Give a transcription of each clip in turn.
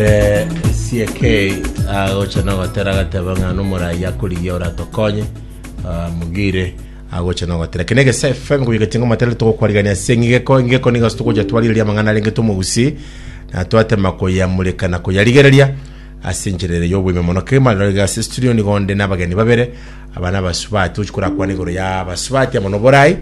Eh, CK agocha nogotera agateba ng'a nomorayi akorigia oratokonye ah, mugire agocha nogotera kene gese fm koyegetinga matera togokwarigania ase ng'igeko ng'igeko nigo togocha twarigeria amang'ana arenge tomogusi na twatema koyamureka na koyarigereria ase enchera ere y'obwime mono kegima rero iga ase studio nigo nde n'abageni babere aba n'abasubati tochi korakwana igoro ya abasubati amo noborai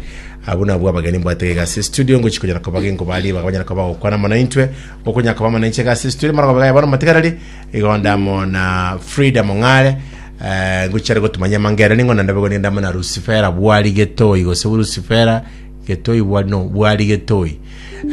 abwo nabwo abageni mbwate iga ase studio ngochi konyara kobagengo bari bakabanyara koba gokwana mono intwe Okonyaka kw'amang'ana ninche egasi esitwire amarogobe g'aya bono matigarari, igo ndamo na Frida Mong'are, eh, ngochiare gotumanyia amangere ning'o naende boigo nigo ndamo na Rusifera Bwari Getoi, gose Rusifera Getoi Bwari, no, Bwari Getoi.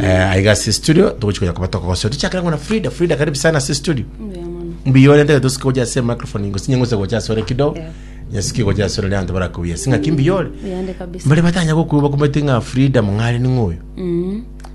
Eh, aiga ase studio, togochi konya koba tokogosera. Tochakere ng'o na Frida, Frida karibu sana ase studio. Mbuya mono. Mbuya ore ntege tosike gocha ase microphone, gose nyeng'use gocha ase ore kidogo, Yeah. nyesike gocha ase ore ne abanto barakubuya. Sing'aki mbuya ore. Yande kabisa. Mbare batanya gokuba kumete ng'a Frida Mong'are ning'o oyo. Mm.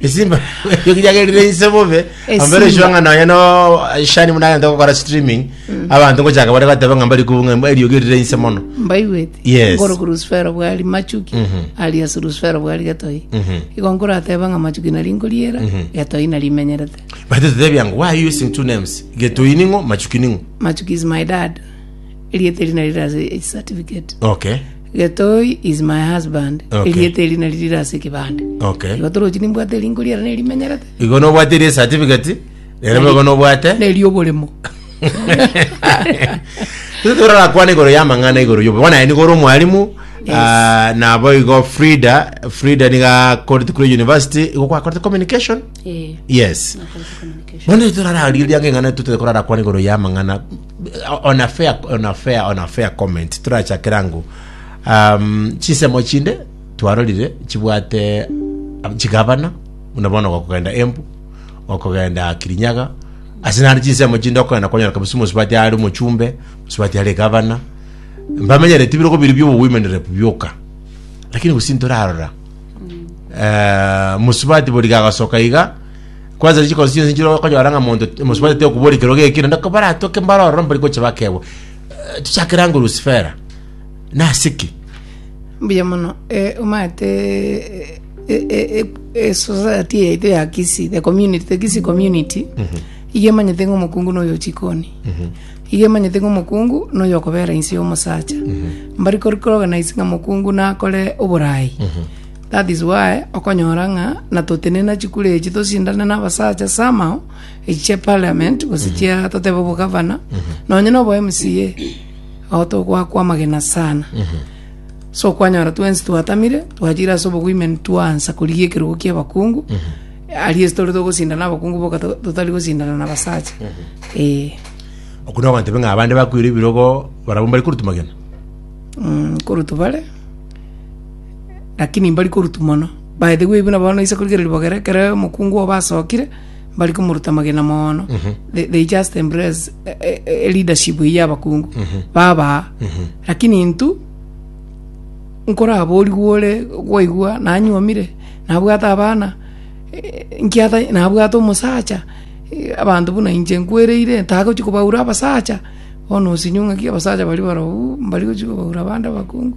esimba ekio kijagerire inse bobe Esimba. ambere eshwang'a nonya no shani muna agente gokora streaming abanto ngochaka bare goteba ng'a mbari kubunga mba eriogi erire inse mono mbaigwete Yes. ngoroku rusifero bwari machuki ari ase rusifero bwari getoi igo nkorateba ng'a machuki nari nkoriera getoi nari imenyerete but tetebia ngo why are you using two names getoi ning'o machuki ning'o machuki is my dad erieta eri nari rase age certificate okay Getoi is my husband. Okay. Erieta eri nari rire ase ekebande. Okay. Igo torochi nimbwate erinko riare nerimenyerete. Igo nobwate eri certificate, rero boigo nobwate. Neri oboremo. Tose torakwana igoro ya mang'ana igoro yobo. Bona yani goro mwalimu ah, na boigo Frida, Frida niga Court Crew University, igo kwa Court Communication. Eh, Yes. nakoze communication. Bona torarariria ng'ana tutete korara kwa igoro ya mang'ana On a fair, on a fair, on a fair comment torachakere ango um, chisemo chinde twarorire chibwate ab- chigabana buna bono gokogenda embu gokogenda kirinyaga ase nare chisemo chinde okogenda kwanyora kabisa omosubati are omochumbe omosubati are gabana mbamenyere tibirogo biri biobo women rep bioka lakini gose ntorarora eh, mosubati boriga agasoka iga Kwansa ne chikosi chionsi nchire okonyora ng'a monto mosubati tekobora ekero gekire, naende kobaratoke mbare ororo mbari gocha bakebwa. Eh, Tichakere ango Lusifera. Nasiki. mbuya mono eh, omanyete eh, eh, eh, eh, society yaito ya kisi the community the kisi community iga emanyete ng'a omokungu noyo chikoni iga emanyete ng'a omokungu noyo okobera inse y'omosacha mbari kori organize ng'a mokungu nakore oborai That is why okonyora ng'a natotenena chikura echi tosindane na abasacha somehow echi chia parliament gose chia totebe obogavana nonye na obo MCA ago togwakwa amagena sana so kwanyora twensi twatamire twachire ase obowomen twansa korigia ekerogo kia abakungu aria ase tore togosindana abakungu boka to- totari gosindana na abasacha eh okuna ogoteba ng'a abande bakwire ebirogo barabwo mbari koruta magena mm, korutu bare Lakini mbari korutu mono, baete gwebuna bono ise korigereria bogere, ekero omokungu obo asokire, mbari komoruta amagena mono, they, they just embrace eh, eh, eh, leadership eyio y'abakungu, babaa. Lakini intwe, nkoraborigwe ore gwaigwa nanyuomire nabwate abana eh, nkiata nabwate omosacha eh, abanto buna inche nkwereire ntagochi kobaura abasacha bono osinywe ng'aki abasacha bari barobwo mbari gochi kobaura abande abakungu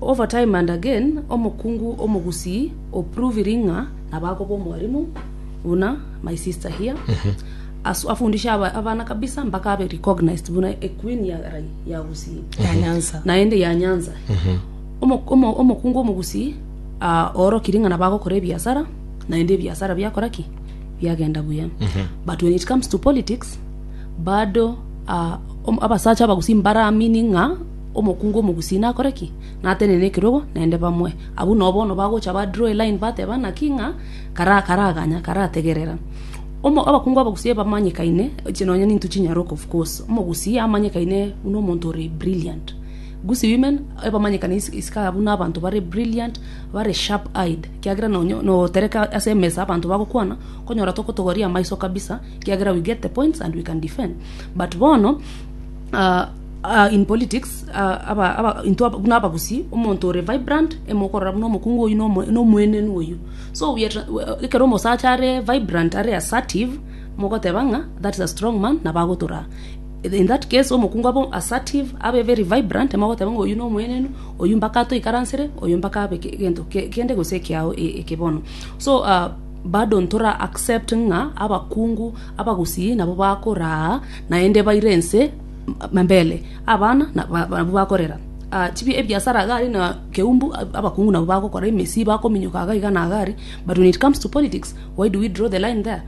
Over time and again, omokungu omogusii o proving ng'a nabakoba omwarimu buna my sister here asu- afundishe aba- abana kabisa mpaka abe recognized buna a queen ya rai ya gusii ya Nyanza. naende ya nyanza Omo- omo- omokungu omogusii ah, oorokirie ng'a nabagokora ebiasara naende ebiasara biakora ki biagenda buya but when it comes to politics bado ah, om- abasacha abagusii mbaramini ng'a Omokungu omogusi nakore ki? Natenene ekerogo naende bamoe. Abwo nao bono bagocha ba draw eline bateba naki ng'a karaganya karategerera. Abakungu abagusi ebamanyekaine echi nonya ninto chinyaroke of course. Omogusi amanyekaine buna omonto ore brilliant. Gusi women ebamanyekane iskaga buna abanto bare brilliant bare sharp eyed ekiagera nonya notereka ase emesa abanto bagokwana okonyora tokotogoria amaiso kabisa ekiagera we get the points and we can defend but bono Ah, ah, in politics ah, aba, aba, into aba- buna abagusii omonto ore vibrant emokorora buna omokungu oyu na omo- na omoenenu oyu so we are tra- we- uh, ekero omosacha are vibrant are assertive mogoteba ng'a that is a strong man nabo agotoraa in that case omokungu abe assertive abe very vibrant mogoteba ng'a oyu na omoenenu oyu mpaka atoikaransere oyu mpaka abe ke- gento ke- kende gose ekeao e- eke bono so ah, bado ntora accept ng'a abakungu Abagusii nabwo bakoraa, naende baire ense mbere, abana nabwo bakorera chibi ebiasara agari na keumbu, abakungu nabwo bagokora emesii, bakominyoka aga iga na agari, but when it comes to politics, why do we draw the line there?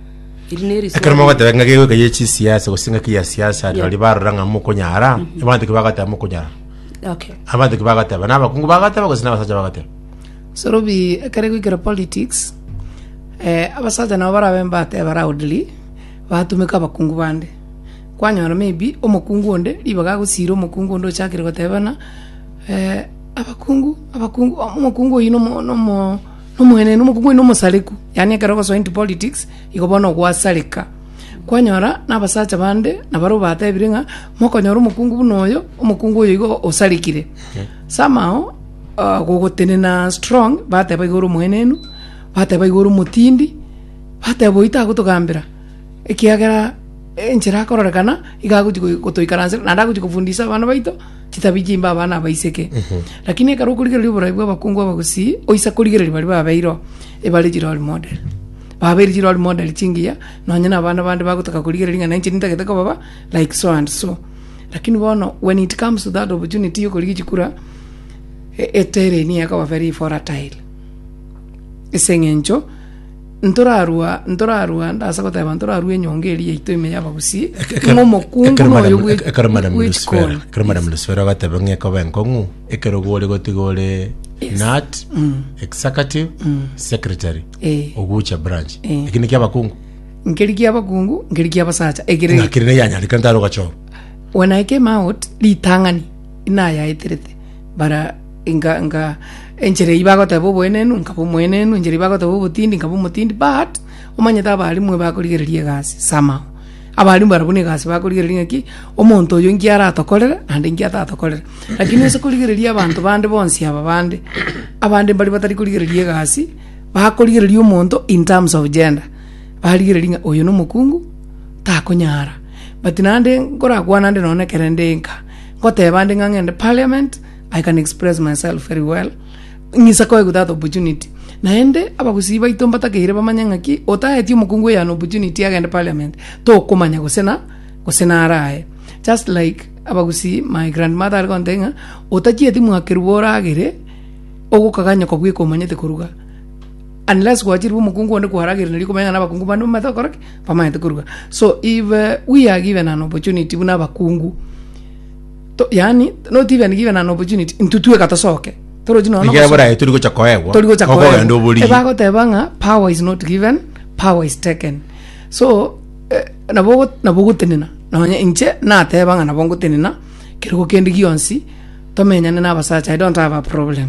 Eri neri swali. Ekero mogoteba ng'a gegoika ye chisiasa gose ng'aki ya siasa Yeah. nari barora ng'a mokonyara abanto ki bagateba mokonyara Okay. abanto ki bagateba na abakungu bagateba gose na abasacha bagateba Sorobi ekere goikera politics, abasacha nabo barabe mbateba loudly, batumeka abakungu bande. Kwanyora may be omokungu onde ribaga agosira omokungu onde ochakire goteba bana, abakungu, abakungu, omokungu oyio nomo nomo nomoenenu, omokungu oyio nomosareku. Yaani ekero ogosoa into politics, igo bono gwasareka. Kwanyora na abasacha bande nabare obatebire ng'a, mokonyora omokungu buna oyo, omokungu oyo igo osarekire. Somehow. Agogotenena strong, bateba iga ore omoenenu, bateba iga ore omotindi, bateba oyio tagotogambera, ekiagera enchera akororekana iga agochi goi- gotoikaransera, naende agochi kofundisa abana baito chitabi chimbe abana abaiseke. Lakini ekero okorigereria oborai bwa abakungu abagusii, oise korigereria baria babeire oo, ebare chirori model, babeire chirori model chingiya, nonye na abana bande bagotaka korigereria ng'a nainche nintagete kobaba like so and so. Lakini bono when it comes to that opportunity yokorigia chikura. etere nigo ekoba very volatile, ase eng'encho ntorarwa ntorarwa ndase goteba ntorarwa enyonga eria yaito ime ya abagusii, ng'a omokungu Ekero noyo madam- bwe- ekero madam bwechikoni. Lusifera ekero madam Lusifera agateba ng'a ekoba enkong'u ekero gore gotiga ore nut executive secretary Eh. ogocha branch Eh. eki niki abakungu nkeri kia abakungu nkeri kia abasacha ekere ng'a keri neyanyareka ntare ogachorwa when I came out ritang'ani nayaeterete bara nka nka enchera eyio bagoteba oboenenu nkaba omoenenu, enchera eyio bagoteba obotindi nkaba omotindi but, omanyete abaarimue bakorigereria egasi somehow. Abaarimue barabwo na egasi bakorigereria ng'a ki, omonto oyo nki aratokorere naende nki atatokorere. Lakini ase korigereria abanto bande bonsi aba bande, abande mbaria batari korigereria egasi, bakorigereria omonto in terms of gender, barigereria ng'a oyo na omokungu, takonyara. But naende nkorakwane naende nonye na ekero nde nka. Ngoteeba nde ng'a ng'ende parliament, I can express myself very well, ng'isa koegwa that opportunity. Naende abagusii baito mbatakeire bamanye ng'aki otaeti omokungu oyone opportunity agende parliament, tokomanya gose na gose naro aye. Just like abagusii my grandmother are gontebi ng'a otachieti mwakerwa oragere, ogokaganyoka bweka omanyete koruga, unless gwachirwe omokungu onde kwaragerire nari okomanya ng'a na abakungu bande mbamanyete gokora ki? Bamanyete koruga. So if uh, we are given an opportunity buna abakungu to, yani not even given an opportunity ntutweka tosoke torochi nono Ekero boraye turi gocha koegwa. tori gocha Okogenda oborigi. ebagoteba ng'a power is not given power is taken so eh, nabo ogo- nabo ogotenena nonya inche nateba ng'a nabo ngotenena kerogo kende gionsi tomenyane na abasacha i don't have a problem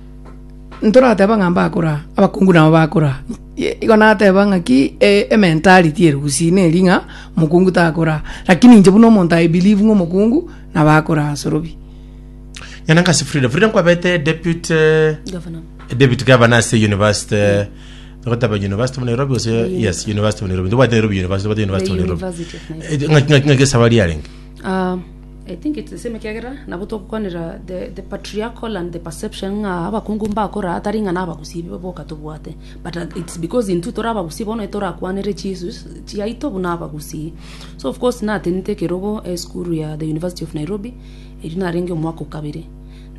ntorateba ng'a mbakora, abakungu nabo bakora. Ye- Igo nateba ng'aki e- ementality ere gusii neri ng'a mokungu takora. Lakini inche buna omonto I believe ng'a omokungu nabo akora asorobia. Nyanangasi Frida, Frida nkwabete deputy Governor. deputy governor ase university gotaba university of Nairobi gose yes university of Nairobi tobwate Nairobi university tobwate university of Nairobi University of Nairobi. Eh, ng'aki ng'aki ng'aki esabari yarenge Ah, I think it's the same ekiagera nabo togokwanera the, the patriarchal and the perception ng'a abakungu mbakora atari ng'a nabagusi boka tobwate but uh, it's because intwe tore abagusi bono etorakwanere chisu chiaito buna abagusi so of course natenete ekerogo esukuru ya the university of nairobi eri narenge omwaka okabere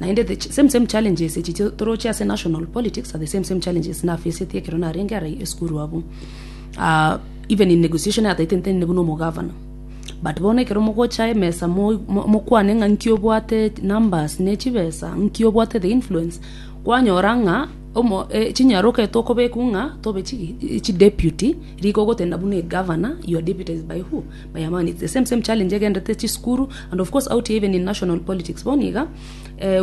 naende the ch- same same challenges echi chi- toroche ase national politics are the same same challenges nafacete ekero narenge ara esukuru abu uh, even in negotiation ataitentene buna omogavana But bono ekero mogocha emesa mokwane ng'a nki obwate numbers ne chibesa, nki obwate the influence, kwanyora ng'a chinyaroka eria tokobekwa ng'a tobe chi deputy, rika ogotenda buna egovernor, your deputy is by who? By Amani. Its the same same challenge egenderete chisukuru and of course out here even in national politics. Bono iga,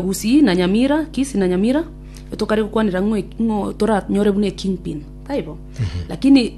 Gusii na Nyamira, Kisii na Nyamira, tokare gokwanera ng'a toranyore buna ekingpin, taibo? Lakini.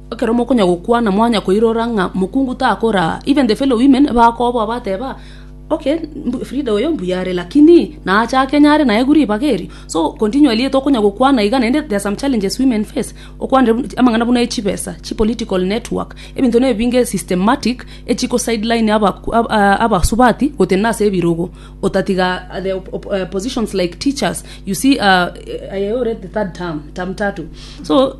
Ekero mokonya gokwana, mwanya koirora ng'a mokungu takoraa, even the fellow women bakoboa bateba, Okay, Frida oyo mbuya are, lakini naache ake nyare naye guru ribaga erio? So continually tokonya gokwana iga naende there are some challenges women face, okwanire buna amang'ana buna echibesa, chipolitical network, ebinto na ebinge systematic echi ko sideline aba abasubati gotenena na ase ebirogo, otatiga the op op positions like teachers, you see aah aye ore the third term, term tatu, so.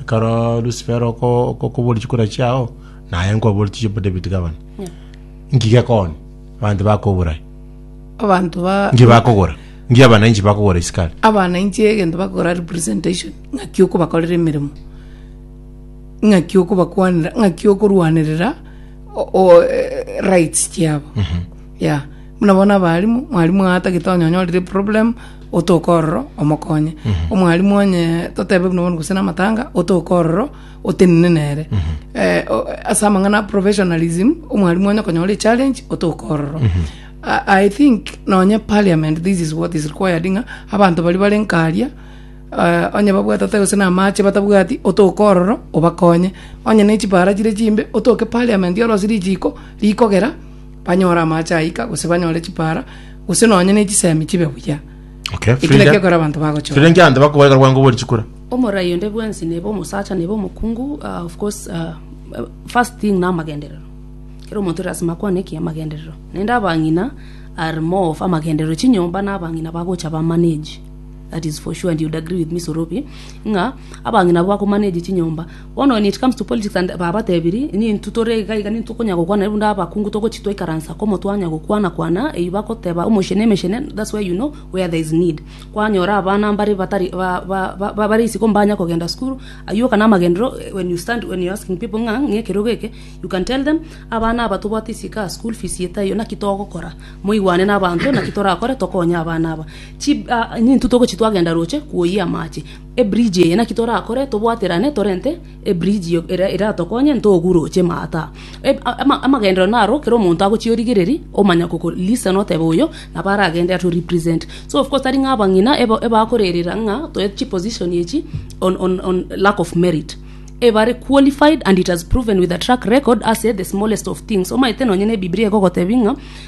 Ekero Lusiferi oko- okokuboria chikura chiao, naye nkoborie tichi bo David gavana. Nki gekoonia? Abanto bakobura aye. abanto ba Nki bakogora? Nki abananchi bakogora isiko aria? abananchi egento bakora representation ng'aki okobakorera emeremo ng'aki okobakwanera ng'aki okorwanerera o- o- eh, rights chiabo Yea, buna bono abaalimu, mwalimu oye atagete onye onyorire eproblem, otoke ororo omokonye. Omwalimu onye totebe buna bono gose namatanga, otoke ororo otenene nere. Eh, o- ase amang'ana a professionalism, omwalimu onye okonyora echallenge, otoke ororo. I, I think nonye parliament this is what is required ng'a abanto baria bare nkaria eh, onye babwate ata gose namache batabwati otoke ororo obakonye onye nechipara chire chimbe otoke parliament orose richiko rikogera banyore amaache aika, gose banyore chipaara, gose nonya ne chisemi chibe buya. Okay, Eki Frida. nakekora abanto bagochora. Frida nkianto bakobareka rwango bori chikura. omorai onde bwensi neba omosacha neba omokungu ah, of course ah, eh, first thing na amagenderero kera omonto lasima akwane eki amagenderero naende abang'ina are more of amagenderero chinyomba na abang'ina bagocha bamanage that is for sure and you'd agree with me sorobi ng'a abang'ina bakomanage chinyomba Bono when it comes to politics and babatebirie inye intwe tore iga iga nintwe okonya gokwana naende buna abakungu togochi twaikaransa amo twanya gokwana kwana eyio bagoteba omochie na emechie ne that's where you know where there is need kwanyora abana mbare batari ba ba ba bare isiko mbanya kogenda school ayio oka namagenderero when you stand when you asking people ng'a ng'e ekerogo eke you can tell them abana aba tobwate isiko aa school fees eye taiyo naki togokora moigwane na abanto naki torakore tokonye abana aba chi ah inye intwe togochi twagenda roche kwoyia amache Ebridge eye naki torakore tobwaterane torente ebridge eria eratokonye ntogu roche maata. Amagenderero naro kera omonto agochie origereri omanya ko listen otebe oyo nabo aragende ato represent. So of course tari ng'a abang'ina ebakorerera ng'a toe chiposition echi on on lack of merit. Ebare qualified and it has proven with a track record ase the smallest of things. Omanyete nonye ne ebibiria egogotebi ng'a.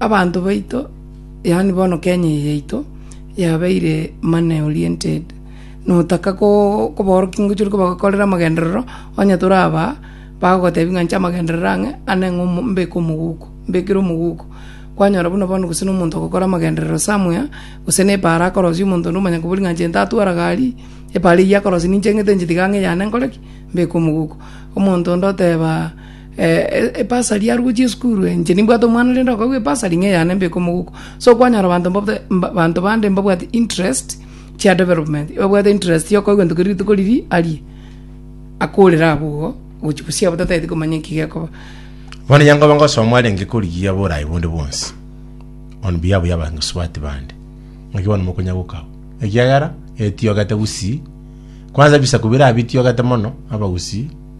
Abanto baito, yaani bono Kenya eye yaito, yabeire money oriented, notaka koo kobaorokia ngochia ore kobakorera amagenderero, onye toraba aa, bagotebia ng'a inche amagenderero ang'e ane ng'a omo mbeke omoguko, mbekere omoguko. Kwanyora buna bono gose na omonto ogokora amagenderero somewhere, gose na epaaro akorosia omonto onde omonyene koboria ng'a inche ntatwara gari, epaaro eyio akorosia ninche ng'ete inche tiga ng'a eyane nkore ki? mbeke omoguko. Omonto onde oteba. Ebasari yarugwa chisukuru inche nimbwate omwana rende okagwa ebasari ng'a eyane mbeke omogoko. So kwanyora abanto mbabe abanto bande mbabwate interest chia development, ebabwate interest ya okoigwa ntoki rituko riria aria, akorere abwo igo gochia bosio abwo tatagete komanya eki gekoba. Bono onye nkoba ngosoma arenge korigia oboraai bonde bwonsi on behalf ya abasubati bande, naki bono mokonya goka abwo? Ekiagera etiogete gusii, kwanza ebisaku bire abitiogete mono, abagusii.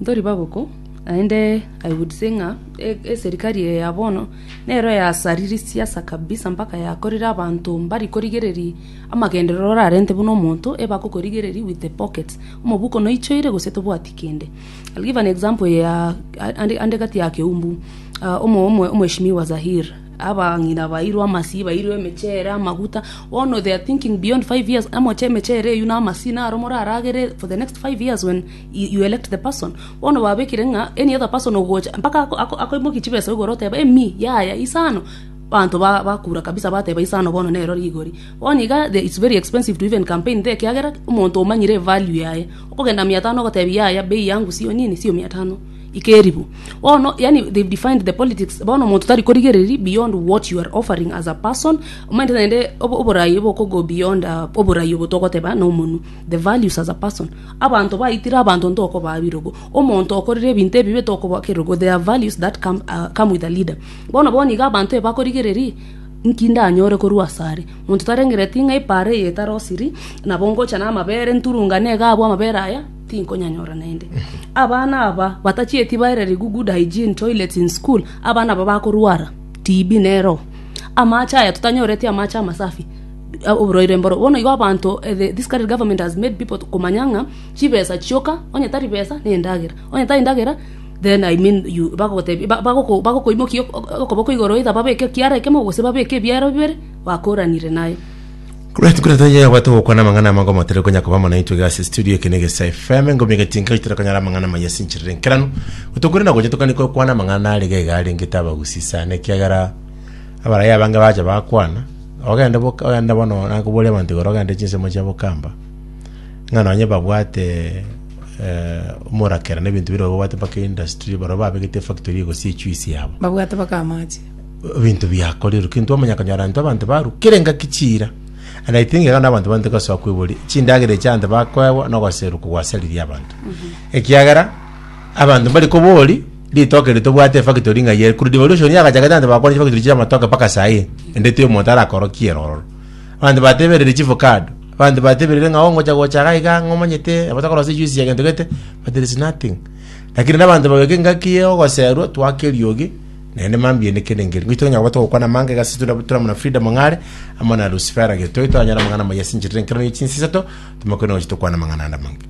Ntori baboko, naende I would say ng'a eserikari eye ya bono nero yasariri siasa kabisa mpaka yakorire abanto mbari korigereria amagenderero orarente buna omonto eba akokorigereria with the pockets, omobuko noichoire gose tobwati kende. I'll give an example ya ande ande gati ya Keumbu, omo omo omheshimiwa Zahir, abang'ina bairwe amasii bairwe emechere, amaguta, bono they are thinking beyond five years, amoche emechere eywo na amasii naro moraragere for the next five years when. you elect the person bono babekire ng'a any other person ogocha mpaka ako- ako- akoimokia chibesa igoro oteba emi yaya isano abanto ba- bakura kabisa bateba isano bono nero rigori bono iga the it's very expensive to even campaign there ekiagera omonto omanyire evalue yaye okogenda mia tano ogotebi yaya bei yangu sio nini sio mia tano ikeribu bono yaani they've defined the politics bono omonto tari korigereria beyond what you are offering as a person omanyete naende obo- oborayi bokogo beyond ah oborayi obo togoteba na omonwe. the values as a person. Abanto baitire abanto ntokobaa birogo. Omonto okorire ebinto ebibe tokobaa kerogo. There are values that come, uh, come with a leader. Bono bono iga abanto ebakorigererie nki ndanyore korwa asare monto tarengereti ng'a ipare eye etarosiri nabo ngocha n'amabere nturunga negabu amabere aya tinkonyanyora naende abana aba batachieti baereri good hygiene toilets in school abana aba bakorwara tb nero amache aya totanyoreti amache amasafi oborwaire mboro. Bono igo abanto this current government has made people to komanya ng'a chibesa chioka onye tari besa nendagera onye tari ndagera then I mean you bagogotebia ba bagoko bagokoimokia okoboko igoro either babeke ekiara ekemo gose babeke ebiara bibere bakoranire naye. Buna ntwe buna ntwe yabwate gokwana amang'ana amange omotari konya koba mono naintwe iga ase estudio eke na egesa FM engomi egetinka gochia tore konyara amang'ana amaya ase enchera enkeranu gotokore na gocha tokani kokwana amang'ana arege iga arengete abagusii sana ekiagera abaraya abange bacha bakwana Ogende boka, ogende bono nakoboria abanto igoro, ogende chinsemo chiabo kamba, ng'a nonye babwate eh, omorakera na ebinto bire babwate mpaka industry, barabwo babegete efactory egosia echuisi yabo babwate baka amache ebinto biakorerwe kintwe omanya konyora intwe abanto barukire engaki chiira and i think iga nabanto bante gosoa kwibori chindagera echi abanto bakoegwa nogoserwa kogwasariria abanto ekiagera abanto mbari kobori Ritoke erio tobwate efactory ng'ai ere. Korwa devolution yagachakete abanto bakore chifactory chia amatoke mpaka saii. Ende tiri omonto arakorokie ere ororo. Abanto bateberire chief card. Abanto bateberire ng'a oo ngocha gocha iga iga ng'a omanyete nabo tokorosiria juice ya gento gete. But there is nothing. Lakini na abanto bagoika engaki ya ogoserwa twake eriogi naende mambiaene kende ngeria. Ngochi tokonyara koba togokwana amanga iga ase tuna tuna buna freedom ng'are amo na Lucifera gete. Toigwe twanyora amang'ana amaya ase enchera enkero ne chinswe isato, tomoke nonya gocha tokwane amang'ana ande amange.